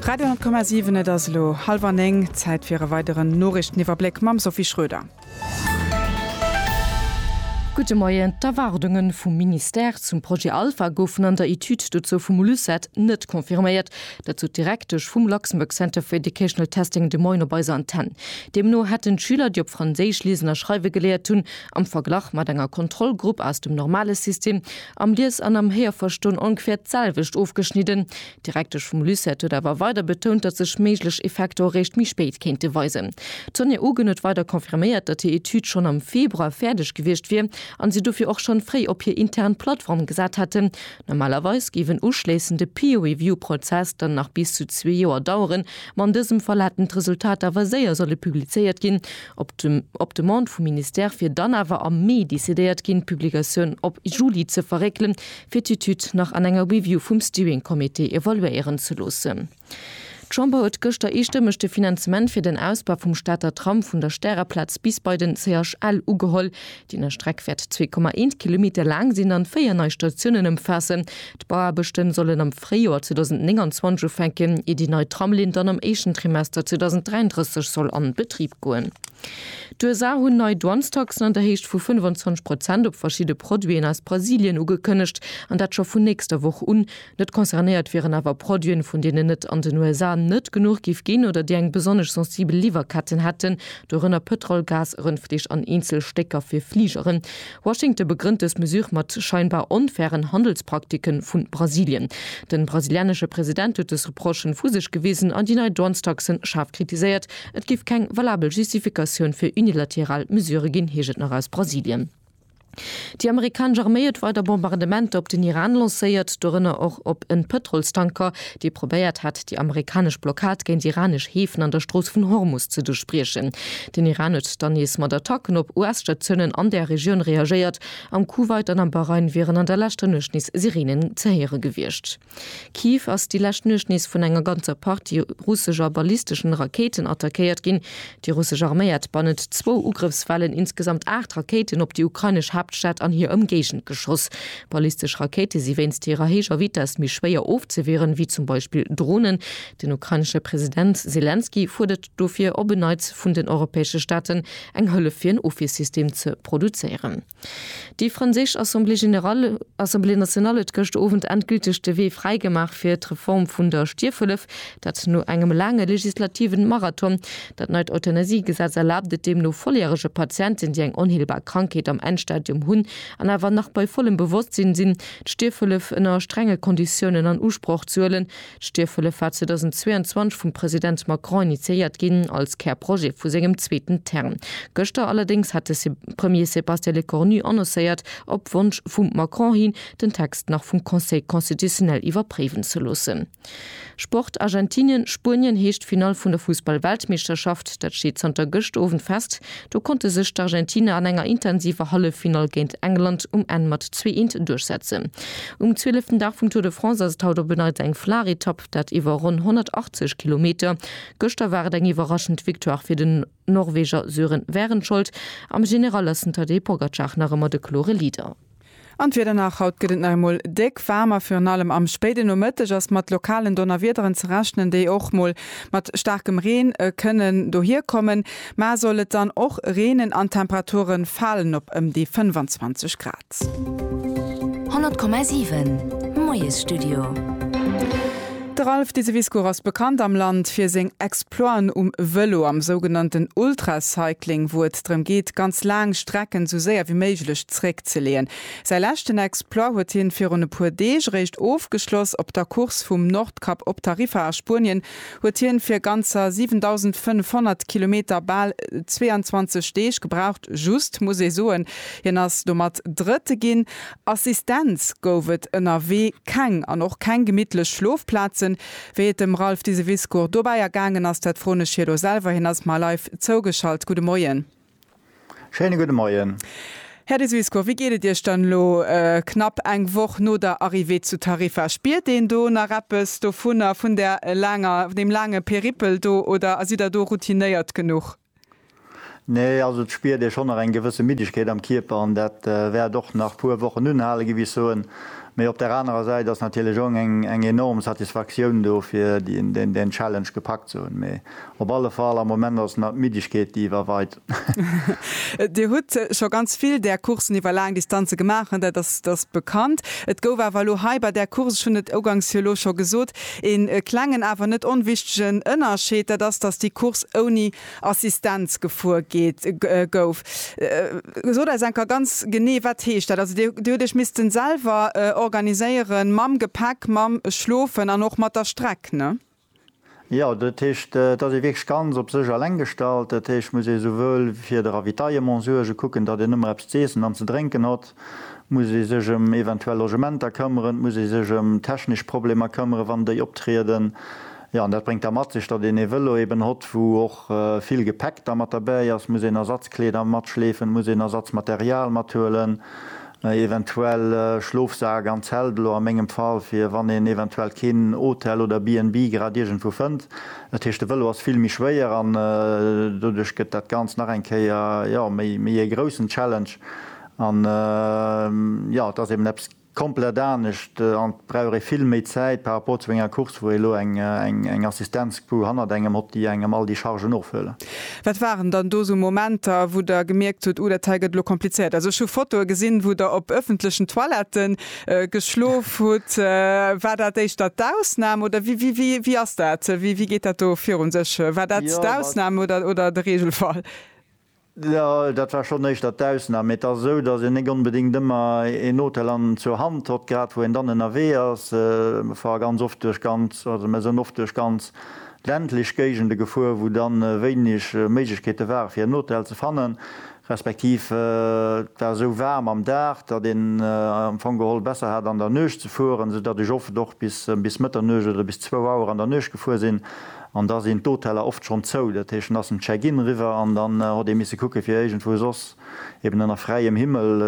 Radio 10,7 Et ass elo hallwer néng, Zäit fir e weideren Noriichteniwwerbléck mam Sophie Schröder. Gudde Moien, D'Erwaardunge vum Ministère zum Projet Alpha goufen an der Etüd dozou vum LUCET net confirméiert. Dat sot d'Direktesch vum Luxembourg Center for Educational Testing de Moien op eiser Antenn. Deemno hätten d'Schüler, déi op Franséisch liesen a schreiwe geléiert hunn, am Verglach mat enger Kontrollgrupp aus dem normale System, Am Lies an am Héierverston ongeféier d'selwecht ofgeschnidden. D'Direktesch vum LUCET huet awer weider betount, datt sech méiglech Effekter och réischt méi spéit kéinte weisen. D'Sonja Ogen huet weider confirméiert, datt hir Etüd schonn am Februar fäerdeg gewiescht wier an si dofir och schonn fréi op hir intern Plattform gesat hätten. Normalerweis géif en uschléissende Peer-Review-Prozess dann nach bis zu zwee Joer daueren, ma an dësem Fall hätten d'Resultater awer séier solle publizéiert ginn, op Demande vum Ministère, wier dann awer am Mee decidéiert ginn, d'Publikatioun op Juli ze verréckelen, fir d'Etüd nach an enger Review vum Steering Committee evaluéieren ze loossen. D'Chamber huet gëschter eestëmmeg de Finanzement fir den Ausbau vum Stater Tram vun der Stärerplaz bis bei den CHL ugeholl. Déi nei Streck wäert 2,1 Kilometer laang sinn an 4 nei Statiounen ëmfaassen. D'Bauaarbechten sollen am Fréijoer 2029 ufänken, ier déi nei Tramlinn dann am éischten Trimester 2033 soll an Betrib goen. D'USA hunn nei Douanestaxen an der Héicht vu 25 Prozent op verschidde Produiten aus Brasilien ugekënnegt, an dat scho vun nächster Woch un. Net concernéiert wieren awer Produiten, vun deenen et an den USA net genuch géif ginn oder déi eng besonnesch sensibel Liwwerketten hätten, dorënner Pëtrol, Gas, Rëndfleesch an eenzel Stécker fir Fligeren. Washington begrënnt dës Mesure mat scheinbar onfairen Handelsprakticke vu Brasilien. De brasilianesche President huet dës Reprochen vu sech gewisen an déi nei Douanestaxen schaarf kritiséiert. Et géif keng valabel Justifikatioun fir unilateral Mesurë ginn, heescht et nach aus Brasilien. Déi amerikanesch Arméi huet weider Bombardementer op den Iran lancéiert, dorënner och op en Pëtrolstanker, dee probéiert hat, déi amerikanesch Blockad géint iranesch Heefen an der Strooss vun Hormus ze duerchbriechen. Den Iran huet dann nees mat Attacken op US-Statiounen an där Regioun reagéiert. Am Kuwait an am Bahrain wieren an der leschter Nuecht nees Sireenen ze héiere gewiescht. Kiew ass déi lescht Nuecht nees vun enger ganzer Partie russescher ballisteschen Rakéiten attackéiert ginn. Déi russesch Arméi hätt bannent zwou Ugrëffswellen insgesamt aacht Rakéiten op déi ukrainesch Haaptstad an hir Ëmgéigend geschoss. Ballistesch Rakéite si wéinst hirer héijer Vitess méi schwéier ofzewieren, ewéi zum Beispill Dronen. Den ukrainesche President Selenskyj fuerdert dofir op en Neits vun den europäesche Staaten, eng Hëllef fir en Ofwiersystem ze produzéieren. Déi franséisch Assemblée générale, Assemblée nationale, huet gëscht Owend endgülteg de Wee fräi gemaach fir d'Reform vun der Stierfhëllef. Dat no engem laange legislativen Marathon. Dat neit Euthanasiegesetz erlaabt et deemno volljärege Patienten, déi eng onheelbar Krankheet am Endstadium hunn an awer nach bei vollem Bewosstsinn sinn, d'Stierfhëllef ënner strenge Konditiounen an Usproch ze huelen. D'Stierfhëllef war 2022 vum President Macron initiéiert ginn, als Kärprojet vu sengem zweeten Term. Gëschter allerdéngs hat de Premier Sébastien Lecornu annoncéiert, op Wonsch vum Macron hin, den Text nach vum Conseil constitutionnel iwwerpréiwen ze loossen. Sport, Argentinien, Spuenien heescht d'Finall vun der Fussball-Weltmeeschterschaft. Dat steet zanter gëscht Owend fest. Do konnte sech d'Argentiner an enger intensiver Halleffinall géint England um Enn mat zwee Eent duerchsetzen. Um zwieleften Dag vum Tour de France ass et haut op en Neits eng flaach Etapp, dat iwwer ronn 180 Kilometer. Gëschter war et eng iwwerraschend Victoire fir den Norweger Sören Wärenschold. Am General ass den Tadej Pogacar nach ëmmer de klore Leader. An d'Wieder nach, Haut gëtt et nach eemol déck waarm a virun allem am spéiden Nomëtteg ass mat lokalen Donnerwiederen ze rechnen, déi och mol mat staarkem Reen kënnen dohierkommen. Mar soll et dann och reenen an d'Temperature falen op ëm déi 25 Grad. 100,7 Moiesstudio. De Ralph Diseviscourt ass bekannt am Land fir seng Exploiten um Vëlo, am sougenannten Ultracycling, wou et. Test drëm geet, ganz laang Strecken esou séier wéi méiglech zréckzeleeën. Säi leschten Exploit huet hien virun e puer Deeg eréischt ofgeschloss. Op der Course vum Nordkap op Tarifa a Spuenien huet hien fir ganzer 7.500 Kilometer bal 22 Deeg gebraucht. Just muss ee soen, hien ass domat Drëtte ginn. Assistenz gouf et ënnerwee keng an och keng gemittlech Schlofplazen. Wéi et dem Ralph Diseviscourt dobäi ergaangen ass, dat froen ech hie lo selwer. Hien ass mar live zougeschalt. Gudde Moien. Schéine gudde Moien. Här Diseviscourt, wéi geet et Iech dann elo knapp eng Woch no der Arrivée zu Tarifa? Spiert een do nach eppes dovunner, vun där laanger, vun deem laange Périple do oder sidd Der do routinéiert genuch? Nee, also et spiert ee schonn nach eng gewësse Middegkeet am Kierper an dat wäert och nach puer Wochen unhale gi, wéi ech soen. Mee op der anerer Säit ass natierlech och eng enorm Satisfaktioun do fir deen Challenge gepackt ze hunn. Mee op alle Fall am Moment ass nach d'Middegkeet déi iwwerweit. Dir hutt scho ganz vill där Courssen iwwer laang Distanze gemaach, dat ass bekannt. Et gouf awer elo hei bei där Course, ech hunn et ugangs jo elo scho gesot, Een klengen awer net onwichtegen Ënnerscheed, dat ass dass déi Course ouni Assistenz gefuer gouf. Sot eis enker ganz genee wat heescht dat? Also dir hutt iech missten selwer organiséieren mam Gepäck, mam Schlofen an och mat der Streck, ne? Jo, dat heescht et ass ee wierklech ganz op sech alleng gestallt. Dat heescht et muss ee souwuel fir de Ravitaillement suergen, kucken datt een ëmmer eppes z'eessen an ze drénken hott. muss ee sech ëm eventuell Logementer këmmeren, et muss ee sech ëm technesch Problemer këmmeren, wann déi optrieden. Jo, an dat bréngt da mat sech, datt een ee Vëlo eben hott, wou och vill Gepäck da mat derbäi ass, muss een Ersatzkleeder matschleefen, muss een Ersatzmaterial mathuelen, eventuell Schlofsak an Zelt, elo a mengem Fall, fir wann een eventuell keen Hotel oder BNB grad iergendwou fënnt. Dat heescht, de Vëlo ass vill méi schwéier an doduerch gëtt dat Ganzt nach eng Kéier, jo, méi ee groussen Challenge. An jo, et ass eben eppes komplett anescht an et brauch ee vill méi Zäit par rapport zu enger Course, wou ee elo eng Assistenzcrew hannert engem hott, déi engem all déi Chargen ofhuelen. Wat waren dann do esou Momenter, wou Der gemierkt hutt, uh, dat hei gëtt elo komplizéiert? Also ech hu Fotoe gesinn, wou Der op ëffentlechen Toilette geschlof hutt. War dat éischter d'Ausnam oder wéi ass dat, wéi geet dat do virun sech? War dat d'Ausnam oder de Regelfall? Jo, dat war schonn éischter d'Ausnam, mee et ass esou, datt een néck onbedéngt ëmmer een Hotel an zur Hand hott, grad wou een dann ënnerwee ass. Mer fahre ganz oft duerch ganz, also mer sënn oft duerch ganz ländlech Géigende gefuer, wou dann wéineg Méiglechkeete ware fir en Hotel ze fannen, respektiv et war esou waarm am Dag, datt een am Fong geholl besser hat an der Nuecht ze fueren, esou datt ech oft och bis Mëtternuecht oder bis zwou Auer an der Nuecht gefuer sinn An da sinn d'Hoteller oft schonn zou. Dat heescht, dann ass den Check-in eriwwer an dann hott ee misse kucke fir iergendwou soss eben ënner fräiem Himmel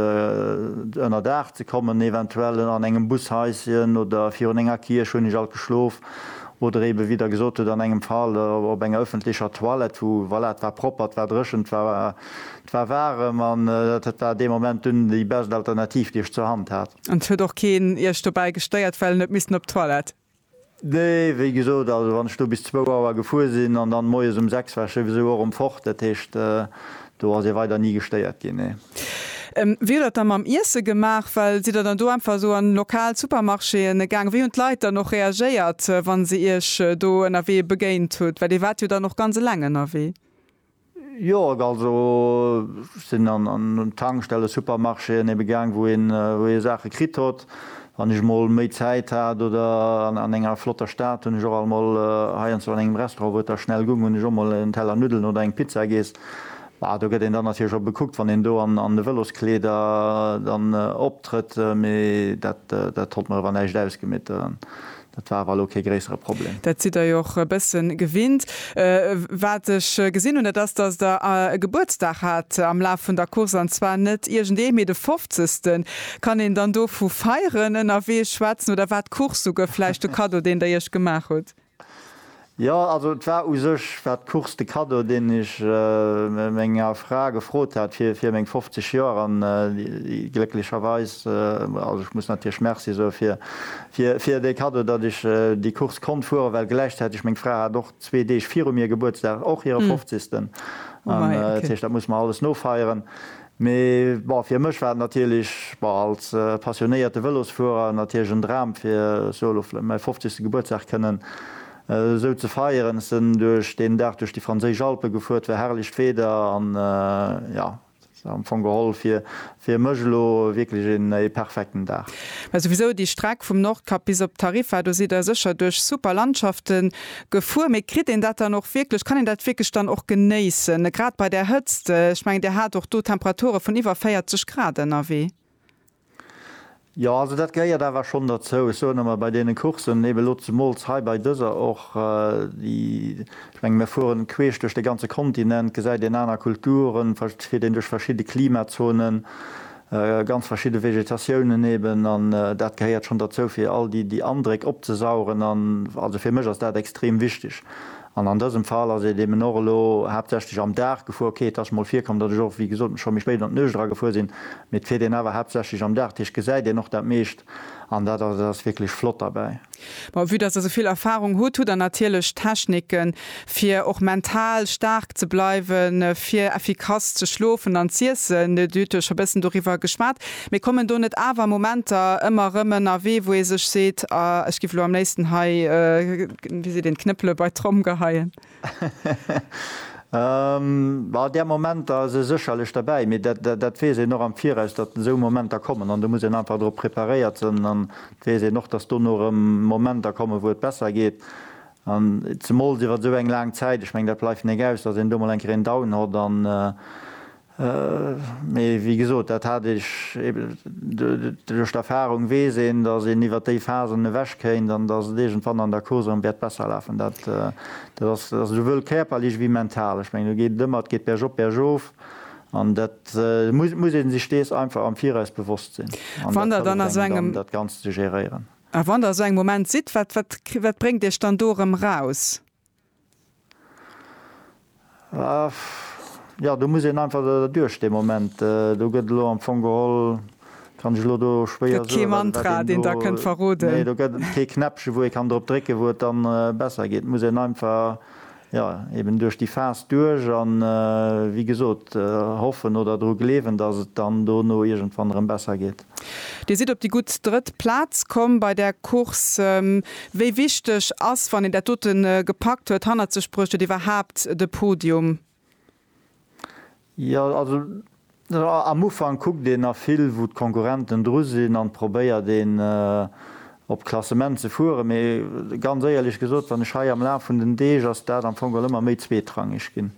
ënner Daach ze kommen, eventuell an engem Bushaischen oder virun enger Kierch, hunn ech alt geschlof, oder eben, wéi Der gesot hutt, an engem Fall op enger ëffentlecher Toilette, wou, voilà, et war propper, et war dréchen, et war, et war waarem an dat war dee Moment dunn déi best Alternativ, déi ech zur Hand hat. An et huet och keen Iech dobäi gestéiert, well en huet missen op d'Toilette? Nee, wéi gesot, also wann ech do bis zwou Auer gefuer sinn an dann moies um sechs war ech souwisou och erëm fort, dat heescht do ass ee weider ni gestéiert ginn, nee. Wéi hutt der et da mam Iesse gemaach? Well sidd der dann do einfach esou an lokal Supermarchéen gaang? Wéi hunn d'Leit dann och reagéiert, wa se iech do ënnerwee begéint hutt? Well dir waart jo dann och ganz eleng ënnerwee. Jo, also ech sinn an un Tankstellen, Supermarchéen ebe gaang, wou ee Saache kritt hott, wann ech emol méi Zäit hat. Oder an enger flotter Stad hunn ech och emol heiansdo an engem Restaurant, wou et da schnell gung, hunn ech och emol en Teller Nuddelen oder eng Pizza giess. Bah, do gëtt een dann natierlech och bekuckt, wann een do an de Vëloskleeder dann optrëtt, mee dat hott mer ewer näischt ausgemeet. Dat war awer elo kee gréissere Problem. Dat sidd Der jo och e bësse gewinnt. Wat ech gesinn hunn, dat ass, dass Der e Gebuertsdag hat am Laf vun der Course, an zwar net iergendee, mee de fofzegsten. Kann een dann do vu Feieren ënnerwee schwätzen, oder war d'Course souguer vläicht de Kaddo, deen Der Iech gemaach hutt? Jo, also et war u sech war d'Course de Cadeau, deen ech menger Fra gefrot hat fir fir meng 50 Joer an déi glécklecherweis, also ech muss natierlech Merci soe fir fir fir dee Cadeau, datt ech déi Course konnt fueren, well gläichzäiteg meng Fra hat och zwee Deeg viru mir Gebuertsdag, och hire fofzigsten an dat heescht, dat muss mer alles nofeieren. Mee bon, fir mech war et natierlech, bon, als passionéierte Vëlosfuerer natierlech en Dram, fir solo vläicht mäi fofzegste Gebuertsdag kënnen esou ze feieren. Ech sinn duerch deen Dag duerch déi franséisch Alpen gefuer, et war herrlecht Wieder an jo, et war am Fong geholl fir fir mech elo wierklech een ee perfekten Dag. Mä souwisou déi Streck vum Nordkap bis op Tarifa, do sidd der sécher duerch super Landschaften Gefuer, mee kritt een dat dann och wierklech, kann een dat wierklech dann och genéissen, grad bei där Hëtzt? Ech mengen, Dir hat och do Temperature vun iwwer 40 Grad ënnerwee. Jo, also dat gehéiert awer schonn derzou. Ech soen emmer, bei deene Courssen, ebe lo zemools hei bei dëser och, déi, ech mengen, mir fueren queesch duerch de ganze Kontinent, gesäit een aner Kulturen, fir den duerch verschidde Klimazonen. ganz verschidde Vegetatiounen eben an dat gehéiert schonn derzou fir all déi déi Andréck opzesaugen an also fir mech ass dat extrem wichteg an an dësem Fall ass et eben och elo haaptsächlech am Dag gefuer. Ok et ass mol virkomm, datt ech och wéi gesot scho méi spéit an d'Nuecht era gefuer sinn, mee et fiert een awer haaptsächlech am Dag, dat heescht gesäit een och dat meescht. an dat ass et ass wierklech flott derbäi. Bon, vue dass Der esouvill Erfahrung hutt, hutt Der natierlech Techniken, fir och mental staark ze bleiwen, fir effikass ze schlofen an z'iessen. Dir hutt jo scho bëssen doriwwer geschwat. Mee kommen do net awer Momenter ëmmer erëm ënnerwee, wou ee sech seet, Ah, ech giff elo am léifsten hei, wéi seet een, d'Knëppele bei d'Tromm geheien? An där Momenter ass e sécherlech derbäi, mee dat weess een och am Viraus, datt esou Momenter kommen an do muss een einfach drop preparéiert sinn. An et weess een och, datt dono erëm Momenter kommen, wou et besser geet an zemools iwwer esou eng laang Zäit. Ech mengen, dat bleift net aus, datt een do mol eng Kéier een Down hott an Mee wéi gesot, dat hat ech eben, duerch d'Erfahrung weess een, datt een iwwert déi Phasen ewech kéint an datt et iergendwann an der Course erëm wäert besser lafen. Dat ass souwuel kärperlech wéi mental. Ech mengen, do geet et ëmmer, et geet bergop, bergof an dat muss ee sech dees einfach am Viraus bewosst sinn an dat hëlleft engem dann, dat Ganzt ze géréieren. A wann Der esou engem Moment sidd, wat bréngt Iech dann do erëm eraus? Jo, do muss een einfach derduerch dee Moment. Do gëtt elo am Fong geholl, kann ech elo do schwéier soen, wat een do. Gëtt kee Mantra, deen Der kënnt verroden? Nee, do gëtt et kee Knäppche wou ee kann drop drécken, wou et dann besser geet. Et muss een einfach, jo, eben duerch déi Phas duerch an, wéi gesot, hoffen oder dru gleewen, dass et dann dono iergendwann erëm besser geet. Dir sidd op déi gutt drëtt Plaz komm bei där Course. Wéi wichteg ass, wann een dat dote gepackt huet, hannert sech bruecht huet, iwwerhaapt de Podium? Jo, also am Ufank kuckt een nach vill, wou d'Konkurrenten dru sinn an probéiert een op d'Klassement ze fueren. Mee ganz éierlech gesot, wann ech hei am Laf vun den Deeg, ass dat am Fong geholl ëmmer méi zweetrangeg ginn.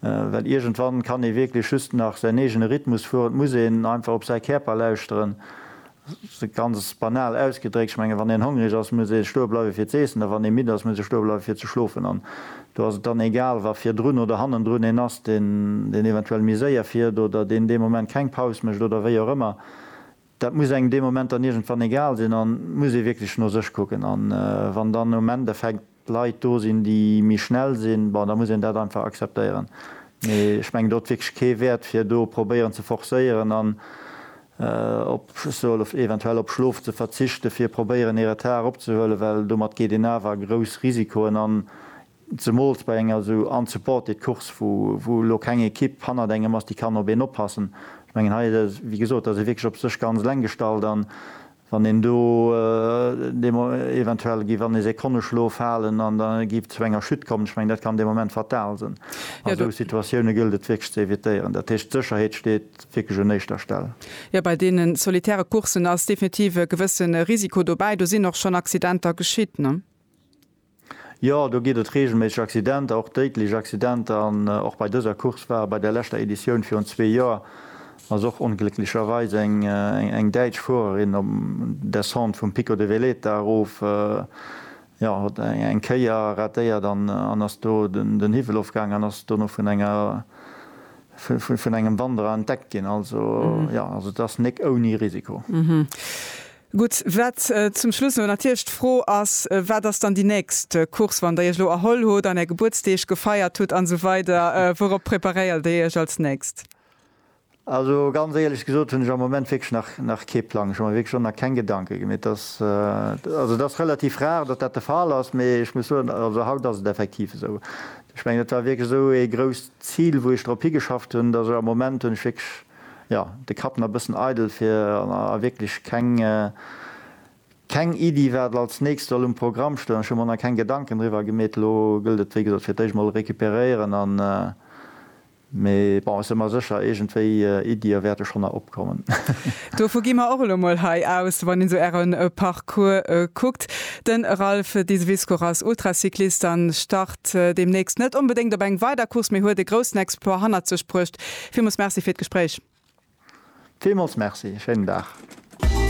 Well iergendwann kann ee wierklech just nach säin eegene Rhythmus fueren. Et muss een einfach op säi Käerper lauschteren. Ganz banal ausgedréckt, ech mengen, wann een hongereg ass, muss ee stoe bleiwe fir z'eessen, a wann ee midd ass, muss ee stoe bleiwe fir ze schlofen. An do ass et dann egal, wa virdrun oder hannendrun een ass, deen eventuell méi séier fiert oder deen dee Moment keng Paus mécht oder wéi och ëmmer. Dat muss engem dee Moment dann iergendwann egal sinn an et muss ee wierklech no sech kucken. A wann dann um Endeffekt Leit do sinn, déi méi schnell sinn, bon, da muss een dat einfach akzeptéieren. Mee ech mengen, do huet wierklech kee Wäert, fir do probéieren ze forcéieren an op, ech soe lo eventuell, op Schlof ze verzichten, fir probéieren ee Retard eropzehuelen, well domat geet een awer grouss Risikoen an, Zemools bei enger esou unsupported Course, wou elo keng Ekipp hannert engem ass, déi kann op een oppassen. Ech mengen hei, wéi gesot, da ass ee wierklech op sech ganz eleng gestallt. An wann een do dee eventuell giff an ee Sekonneschlof falen an da giff et zu enger Chute kommen, ech mengen, dat kann dee Moment fatal sinn. A sou Situatioune gëllt et wierklech ze evitéieren. Dat heescht, d'Sécherheet steet wierklech un éischter Stell. Jo, bei deene solitäre Courssen ass definitiv e gewësse Risiko dobäi. Do sinn och schonn Accidenter geschitt. Jo, do geet et reegelméisseg Accidenter, och déidlech Accidenter. An och bei dëser Course war bei der leschter Editioun virun zwee Joer ass och onglécklecherweis eng däitsch Fuererin op Descente vum Pico de Veleta erof, jo, huet eng Kéier ratéiert an ass do den Hiwwel ofgaangen an ass dono vun enger, vun engem Wanderer entdeckt ginn. Also, jo, also et ass nek ouni Risiko. Gutt, wat zum Schluss no natierlech d'Fro ass, Wat ass dann déi nächst Course, wann Der Iech elo erholl hutt an Är Gebuertsdeeg gefeiert hutt an esou weider, wourop preparéiert Dir Iech als nächst? Also ganz éierlech gesot hunn ech am Moment wierklech nach kee Plang. Ech hu mer wierklech och nach keng Gedanke gem et ass, also et ass relativ rar, datt dat de Fall ass, mee ech muss soen, also haut ass et effektiv esou. Ech mengen, dat war wierklech esou ee grousst Zil, wou ech drop higeschafft hunn, datt ech am Moment hunn ech wierklech jo de Kapp na bëssen eidel fir a wierklech keng keng Iddi wat als nächst soll um Programm stoen. Ech hu mer na keng Gedanken driwwer gemeet. Lo gëllt et wéi gesot fir d'éischt mol recuperéieren an mee bon ech sinn mer sécher iergendwéi Iddie wäerte schonn na opkommen. Dovu gi mer och elo mol hei aus. Wann een sou äre Parcours kuckt, de Ralph Diseviscourt ass Ultracyclist an start deemnächst net onbedéngt op eng weider Course mee huet e groussen Exploit hannert sech bruecht Villmols merci fir d'Gespréich. Villmols merci, schéinen Dag.